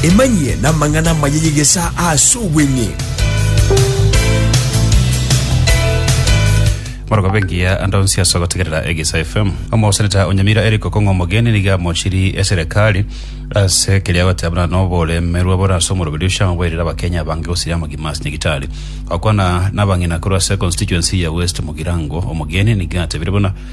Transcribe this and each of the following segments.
Emanyie namang'ana amaya y'egesaa ase obweng'e. Morogobe ngiya ande onsi ase ogotegerera Egisa FM. Omoseneta o Nyamira Eric Okong'o Omogeni nigo amochirie eserekari ase keria agoteba buna noboremerwa bore ase omorogiri oshama bwairire abakenya abange gosiria amagima ase nyagitari. Gokwana nabang'ina korwa ase constituency ya West Mugirango, Omogeni nigo atebire buna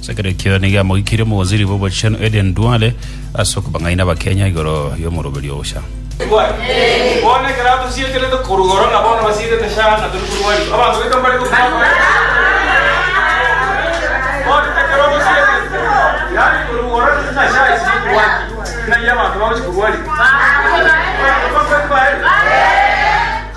Ase ekero ekio nigo amogikirie omogosiri bw'obochenu Aden Duale ase okobang'aina Abakenya igoro y'omoroberio oo Sha.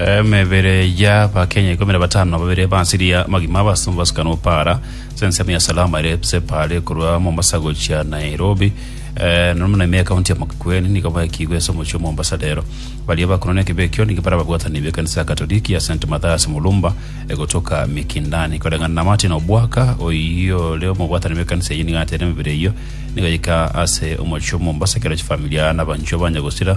Emebere y'abakenya ikomi na batano na babere basiria amagima abasomba basukanwa para ase ensemo ya Salama ere Separe korwa Mombasa gochia Nairobi Eh, na muna emia kaunti ya Makueni nigo baikigwe ase omochie o Mombasa rero baria bakorwa nekibe ekio nigo bara babwatani b'ekanisa ya Katoliki ya St Mathias Mulumba egotoka Mikindani koreng'ana na Martin Obwaka oyio ore omobwatani b'ekanisa eyio nigo atere emebere eyio nigo yaika ase omochie o Mombasa ekero chifamilia na abanchwa banya gosira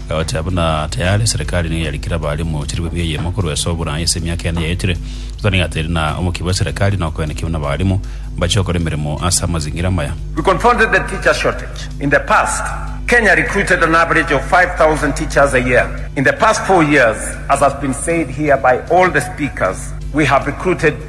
Goetera buna tayari serikali nigo yarikire abaremu chilifu ebiya eyemo korwa ase oborai ase emiaka ene yaetire, Ruto nigo ateire na omokia bwe serikali na okoenekia buna abaremu mbache gokora emeremo ase amazingira amaya. We confronted the teacher shortage in the past. Kenya recruited an average of 5,000 teachers a year. In the past four years, as has been said here by all the speakers, we have recruited.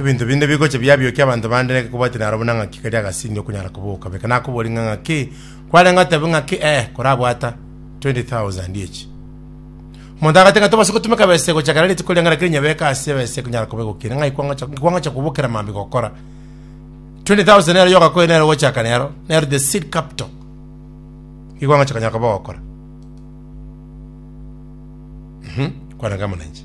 Ebinto binde bigocha biabiokia abanto bande naki kobwati naro buna ng'aki kari agasindi okonyara koboka. Beka nakobori ng'a ng'aki kwarenge otebe ng'aki ee korabwata 20,000 echi. Omonto agoteba ng'a tobasa gotumeka besa egocha kera rituko riang'ana kere nyebeke ase ebesa ekonyara koba egokina ng'ai kwangocha kwangocha kobokera mambia gokora. 20,000 nero yogakoe nero ogochaka nero nero the seed capital igo ogocha konya koba ogokora. Kwarenge amana inche.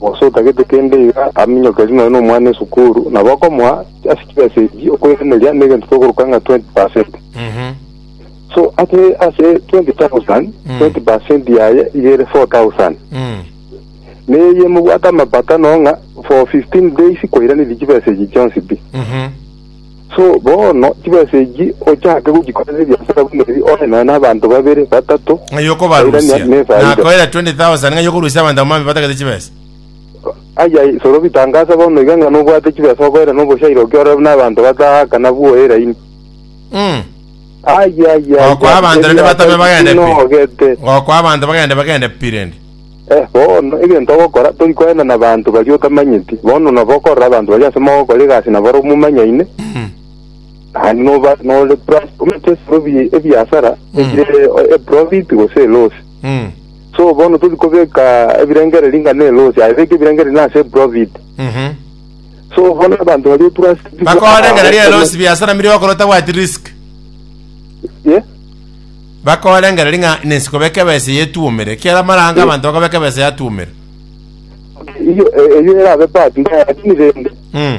Gose otagete kende iga aminyokerie nonya nomwana esukuru, nabo okomoa ase chibesa echi okoiraneria negento kegoruka ng'a 20 percent. So ase ase 20,000, 20 percent yaye iga ere 4,000. Neye mobwate amapato ang'o ng'a for 15 days kwairaneria chibesa echi chionsi pi. So bono, chibesa echi ochake gochikorera ebiasara buna ebi ore nonya nabanto babere, batato, ng'ai okobarusia bairania na efaida. nakoira 20000 ng'ai okorusia abanto abwo mambia batagete chibesa Aya isoro bitangasa bono iga ng'a nobwate chibesa okoirana oboshaire okiorora buna abanto bataha kana bwoe eraini. Mm. Aya aya aya. Gokwa abanto rende batame bagende pi. Nogete. Gokwa abanto bagende bagende pi rende. Eh, bono, egento ogokora, tori koenda nabaanto baria otamanyeti. Bono nabo okorora abanto baria ase mogokora egasi nabare omomanyaine, naende noba nore trust, omanyete esiro bi- ebiasara ebire e profit gose eloss. Mm. So bono tori kobeka ebirengereri inga ne eloss, aye beka ebirengereri na ase eprofit. Mhm. So bono abanto baria otrust Bakoorengera ria elosi biasara mbiri okora otabwati risk. Yeah. Bakorengereria ng'a nensi kobeka ebesa eye etwomire, ekiagera amara ange abanto bakobeka ebesa yatwomire. Eyio e- eyio erabe part ndaya, lakini rende Mm.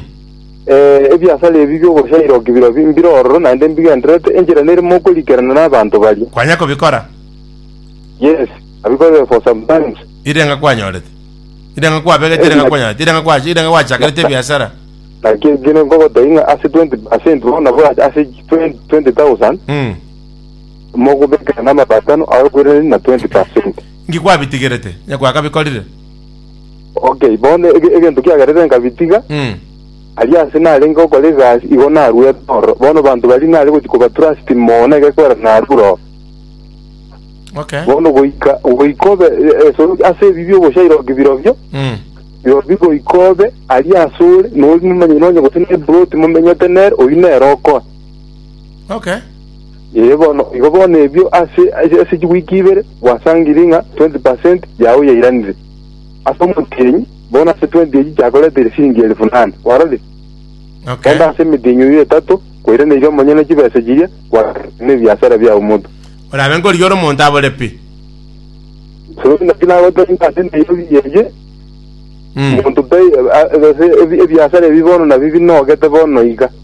eh, ebiasara ebi biogochaira okibira bi- mbire ororo naende mbigendererete enchera nere mokorikerana nabanto baria. Kwanya kobikora? Yes, abikorire for some times. Ire ng'a kwanyorete? Ire ng'a kwabegete? Ire ng'a kwanyorete? Ire ng'a kwa- ire ng'a gwachakerete ebiasara? Lakini kere nkogotebi ng'a ase 20% bono nabo ase 20 20,000 Mm. Mogobekera namato atano ayokoiraneria na twenti pasenti. Inki kwabitigerete? Onye gwakabikorire. Ok, bono ege- egento kiagerete nkabitiga, Mm. aria ase narenge gokora egasi igo naruete ororo. Bono banto baria nare gochi kobatrust mono na egekwera narure oo. Okay. Bono goika goika obe e- esoro ase ebibi oboshairoki birobio, Mm. birobio goika obe aria ase ore, nori momanyene onye gose neploti momenyete nere, oyio nere okoa. Okay. Ee, bono igo bono ebio ase ase chiwiki ibere gwasangire ng'a twenty per cent yao yairanire ase omotienyi, bono ase twenty echi chiakoreteire siringi elifu nane. Kwarorire? Okay. Naende ase emetienyi eyio etato kwairaneire omonyene chibesa chiria gwasangire nebiasara biao monto. Orabe nkorigia ore omonto abore pi. So naki nagotebia ng'a ase Nairobi eye, Mm. monto tai- a- a- ase ebi- ebiasara ebi bono nabi binogete bono iga.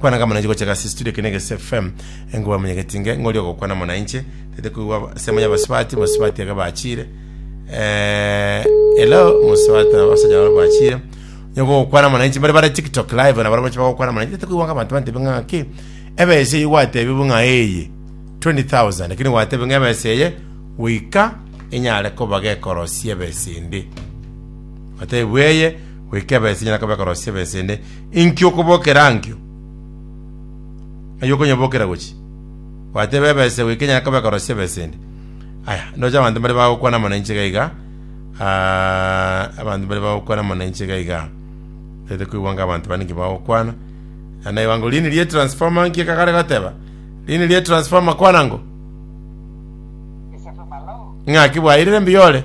Kwana kamo nainche gocha gasi studio kene gese FM enkoba munya getinge ngori ogokwana mo nainche tete koigwa semo ya basibati basibati ege bachire eh hello musibati na basanya baro bachire nyoko gokwana mo nainche bari bare TikTok live na baro bacha gokwana mo nainche tete koigwa abantu bante binga ki ebe ese igwate bibu nga eye 20000 lakini gwate binga ebe ese eye wika inyare koba gekorosia ebe ese ende batebweye wikebese nyara kobe korosia besende Inki okobokera ankio? Ng'ai okonyebokera gochia? Gwateeba ebesa eye goikenya yakoba ekorosia ebesa ende. Aya, ndoche abanto mbare bagokwana mono inche iga iga. Ah, abanto mbare bagokwana mono inche iga iga. Tete koigwa nga abanto bande inki bagokwana. Ah, Naigwa ngo rini rie transformer inki ekagare goteba. Rini rie transformer kwana ngo. Ng'aki bwairire mbuya ore.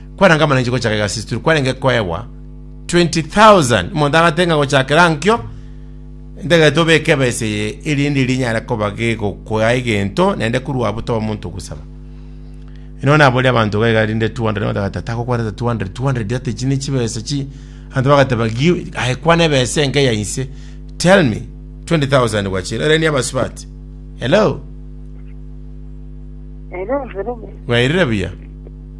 Kwarenge amana inche gochaka egasi tituri kwarenge koegwa 20,000 omonto agate ng'a gochakera nkio ntagete obeke ebesa eye erinde rinyare koba gegokoa egento naende korwa abo toba omonto ogosaba ino nabori abanto gaiga rinde 200 batagata takokwanete 200 200 that echi ne chibesa chi anto bagateba give aye kwana ebesa enke ya inse tell me 20000 gwachira ereni abasubati hello Hello, Jerome. wairire buya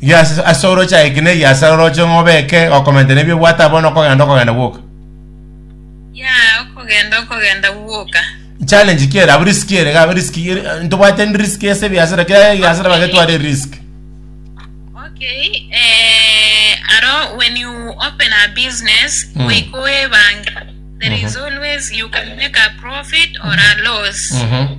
Yes, ase oroche aye ekina eye ase oroche ng'a obeke okomentana ebi obwate abwo na okogenda okogenda gwoka. Yeah, okogenda okogenda gwoka. Challenge ki ere abo risk ere iga risk ere ntobwate risk ase ebiasara kera ebiasara bagetware risk. Okay, eh, aro when you open a business, Mm. goika oebange, there is always you can make a profit or a loss. Mhm.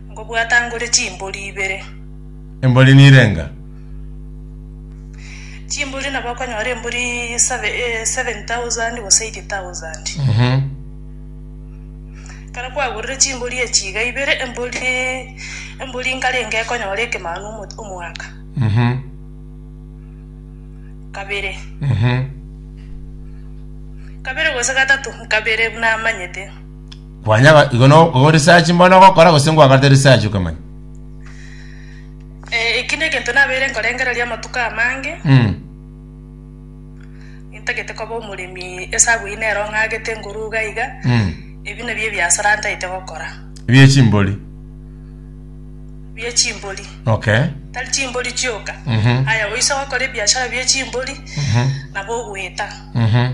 Ngobwatangore chimbori ibere. Embori nirenga? Chimbori nabo okonyora embori save- eh, 7,000 gose 8,000. Mhm. Ekero kwagorire chimbori echi iga ibere, embori embori nkarenge ekonyora ekemanu omo- omwaka. Mhm. Kabere. Mhm. Kabere gose gatato, nkabere buna amanyete. Kwanya ga- igo no- igo research mbono ogokora gose ngwagarete research okamanya Eh, eki negento nabeire nkorengereria amatuko amange Mm. intagete koba omoremi esabu ine ero ng'agete ngoruga iga Mm. ebi nabio ebiasara ntaete gokora bie chimbori bie chimbori okay tari chimbori chioka Mhm. aya oise gokora ebiashara bie chimbori Mhm. nabo ogweta Mhm.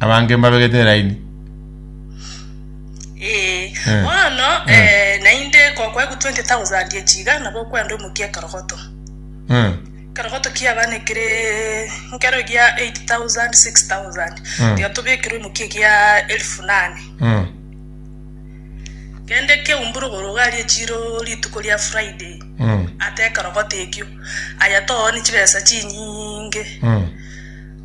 abange mbabegete eraini. Ee, Eh. bono Eh. eh, naende gokwaigwa 20,000 echi iga nabo okwenda omokia ekerogoto Eh, ekerogoto kiabana ekere nkero egia 8,000 6,000 Mm. tiga tobekere omokia egia elfu nane eh, kende keumbure ogorogari echiro rituko ria friday eh, ate ekerogoto ekio aya toone chibesa chinyinge eh.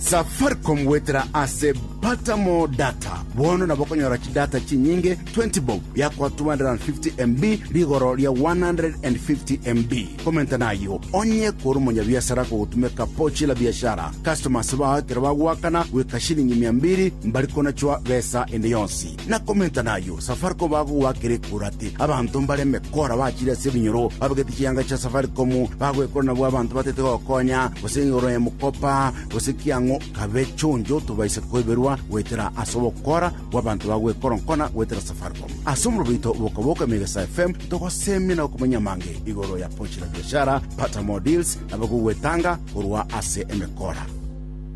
Safaricom goetera ase Pata More Data. Bono nabo okonyora chidata chinyinge 20 bob biakwa 250 MB rigoro ria 150 MB. Komenta nayo onye kore omonyabiasara kogotumeka Pochi la Biashara. Customers bao ekero bagoakana goika shilingi mia mbiri mbari konachwa besa ende yonsi. Na komenta nayio, Safaricom bagogoakera ekura ati, Abanto mbareme kora bachire ase ebinyoro, babegete chianga chia Safaricom, bagoekora nabwo abanto batete gokonya, gose igoro ya mokopa, gose ki ang'o, kabe chonjo tobaise koiberwa goetera ase obokora bw'abanto bagoekora nkona goetera Safaricom. Ase omorobo oito Boka Boka Megesa FM, togosemia na gokumenya amange igoro ya Pochi la Biashara, Pata More Deals, na bagogoetanga korwa ase emekora.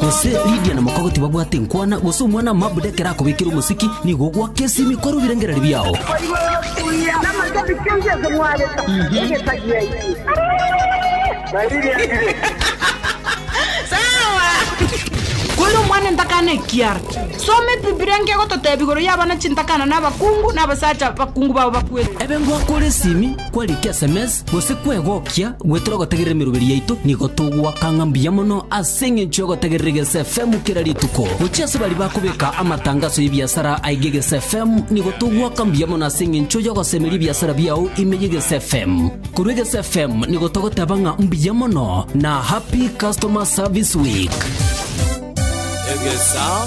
Gose Lidia na mokago tibabwate inkwana, gose omwana mabuda ekero akobekire omosiki, nigo ogwaka esimi kore obirengereri biao. Kore omwana entakana ekiara. Soma Ebibilia enke egototeebia igoro y'abana chintakana na abakungu, na abasacha abakungu bao bakwete. Ebe ngoakore esimi. Kwarikire ase emesa, gose kwegokia goetera ogotegerera emeroberi yaito, nigo togoaka ng'a mbuya mono ase engencho y'ogotegerera egesa efemu kera rituko. Gochia ase baria bakobeka amatangaso y'ebiasara aige egesa efemu, nigo togoaka mbuya mono ase engencho y'ogosemeria ebiasara biao ime y'egesa efemu. Korwa egesa efemu nigo togoteba ng'a mbuya mono na Happy Customer Service Week. Egesa.